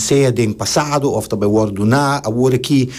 sea den pasado of ta bai wòrdu duná awor aki,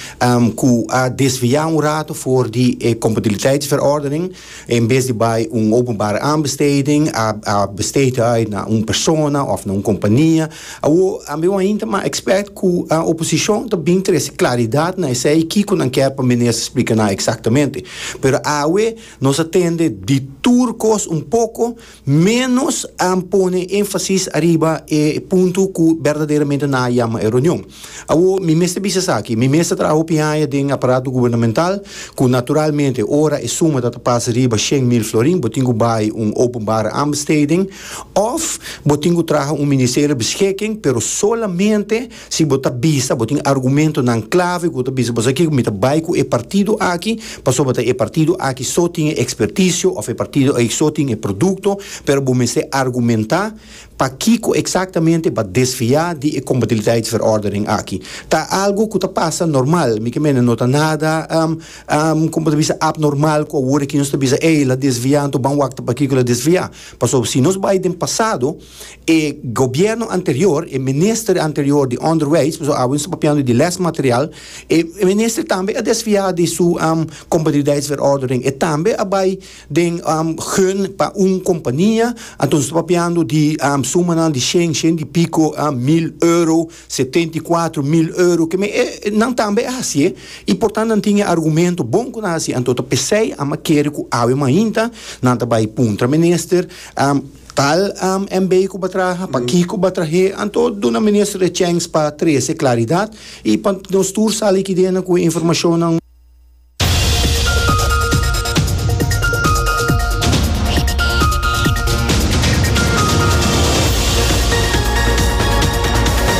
ku a desviá un rato for di e kompatibiliteitsverordening, en bes di bai un openbare aanbesteding a a besteed uit na un persona of na un kompania. Awor ambe wan hinter ma ekspèrt ku oposishon ta bini trese klaridat na esei kiko nan kèr pa Minister splika nan eksaktamente. Pero awe nos a tende di tur kos un poko. Ménos a pone énfasis ariba e punto ku berdaderamente nan a yama e reunion. Awor, mi mester bisa esaki, mi mes ta traha hopi haña den aparato gubernamental, ku naturalmente ora e suma ta ta pas riba shen mil florin, bo tin ku bai un openbare aanbesteding òf bo tin ku traha un ministerio beschikking, pero solamente Si bo ta bisa bo tin argumentonan klave ku ta bisa bo sa kiko mi ta bai ku e partido aki pasobra ta e partido aki so tin e ekspertisio òf e partido aki so tin e produkto pero bo mester argumentá pakiko eksaktamente bo a desviá di e kompatibiliteitsverordening aki. Ta algu ku ta pasa normal mi ke mene no ta nada kon bo ta bisa apnormal ku awor aki nos ta bisa ey la desviá anto ban wak ta pakiko el a desviá pasobra si nos bai den pasado E gobierno anterior, e minister anterior di onderwijs, pasobra awe nos ta papiando di lesmaterial, e minister tambe a desfia di su competitiviteitsverordening, e tambe a bai den gun pa un compania, anto nos ta papiando di sumanan di shen, shen di pico mil euro, setenta i kuater mil euro, keme e nan tambe a hacié y por tanto nan tin e argumento bon cu nan hacié, anto ta pesey a makere cu awe mainta nan ta bai puntra minister. Tal AMB ku ba traha, pa kiko ba trah'é, anto duna Minister e chèns pa trese klaridat i pa nos tur sali kidena ku e informashonnan.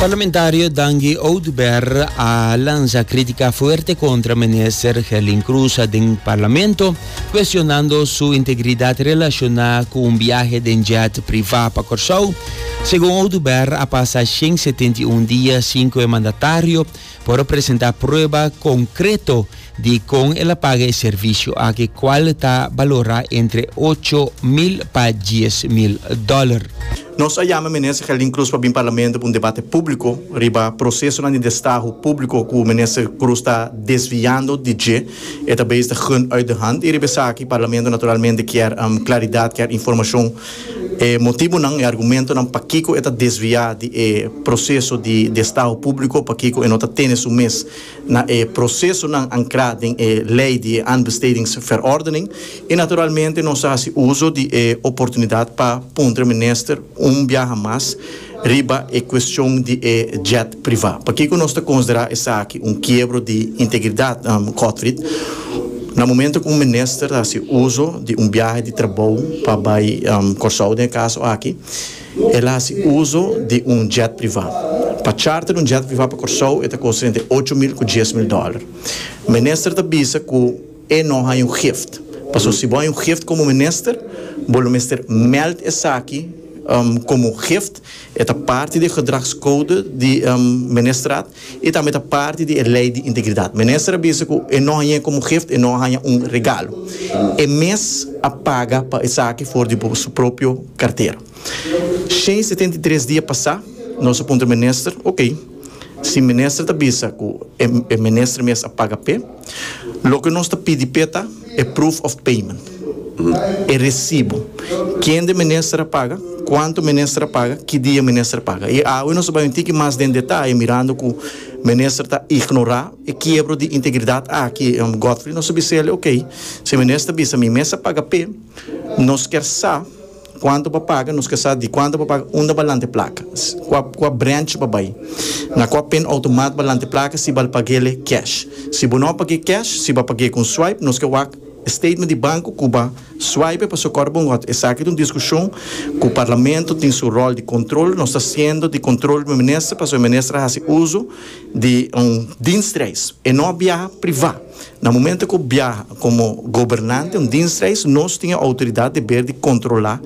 Parlamentario Dangi Oduber a lansa kritika fuerte kontra Minister Herlin Croes den Parlamento. cuestionando su integridad relaciona cu un biahe den jet priva pa Corsou. Segun Oduber a pasa shen setenta i un dia sin cu e mandatario por a presenta prueba concreto di con el a paga e servicio aki cual ta balora entre ocho mil pa dies mil dollar. Nos a yama Minister Gerlin Cruz pa bin Parlamento pa un debate publico riba procesonan di destaho publico cu Minister Cruz ta desviando di dje. E ta bes ta gun uit de hand y riba esaki Parlamento naturalmente kier claridad, kier informacion, e motibonan, e argumentonan pakico e ta desvia di e proceso di estado publico, pakico e no ta tene su mes na e procesonan ancra den e ley di e aanbestedingsverordening y naturalmente nos ta haci uzo di e oportunidad pa puntra Minister un biaha mas Riba e cuestion di e jet priva. Pakico nos ta considera esaki un kiebro di integridad, Godfried? Na momento cu un minister ta haci uzo di un biahe di trabou pa bay Corsou, den e caso aki, el a haci uzo di un jet priva. Pa charter un jet priva pa Corsou e ta costa entre ocho mil cu dies mil dollar. Minister ta bisa cu. E no haña un gift. Paso si bo haña un gift komo minister, bo lo mester mèld esaki komo un gift. E ta parti di e gedragskode di ministerat i tambe ta parti di e lei di integridat. Minister a bisa ku e no hañ'é komo un gift, e no a haña un regalo. E mes a paga pa esaki for di bo su propio kartera. Shen setenta i tres dia pasá, nos a puntra minister, Oke. Si minister ta bisa ku e minister mes a paga p'e, loke nos ta pidi p'e ta e proof of payment, e resibu, kende minister a paga, kuantu minister a paga, ki dia minister a paga. I awe nos ta bai un tiki mas den detaye mirando ku minister ta ignorá e kiebro di integridat aki, Godfrey nos a bisa el, ok, si e minister ta bisa mi mes a paga p'e, nos kier sa Cuanto pa paga, nos ke sa di cuanto pa paga, unda ba lante placa, cua cua branch ba bay, na cua pen automat ba lante placa si bal pagele cash. Si bo no page cash, si ba page con swipe, nos ke wak e statement di banco cu ba swipe paso cor bo ngot esaki ta un discusion cu parlamento tin su rol di control, nos ta haciendo di control cu e minister paso e minister a haci uzo di un dienstreis, e no a biaha priva. Na momento cu biaha como gobernante un dienstreis nos tin e autoridad deber di controla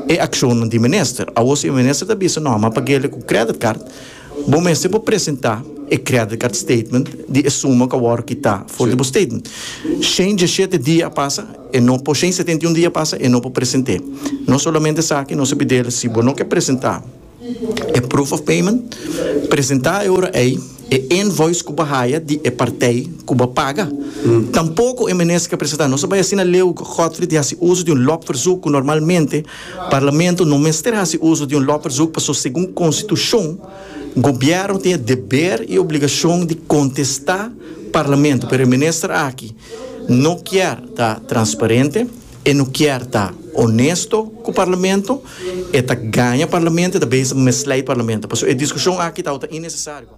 e accionnan di minister. Awo si e minister ta bisa no a mapa guele cu credit card, bo mester por presenta e credit card statement di e suma cu a worde kita for di bo statement. Shen dieschete dia a pasa e no por, shen setenta y un dia a pasa e no por presente. Nos solamente sa aki nos a pidel si bo no ke presenta, E proof of payment presentá e ora ei e invoice ku bo haya di e partij ku bo paga. Tampoko e Minister a presentá. Nos a bai asina Leo Godfrey di hasi uso di un lopverzoek ku normalmente Parlamento no mester hasi uso di un lopverzoek pasobra segun Konstitushon Gobièrnu tin e deber i obligashon di kontestá Parlamento pero e Minister aki no kier ta transparente. E no kier ta onesto cu Parlamento, e ta gaña Parlamento, e ta beza mesla y Parlamento. Pasobra e discusion aki tawata innecesario.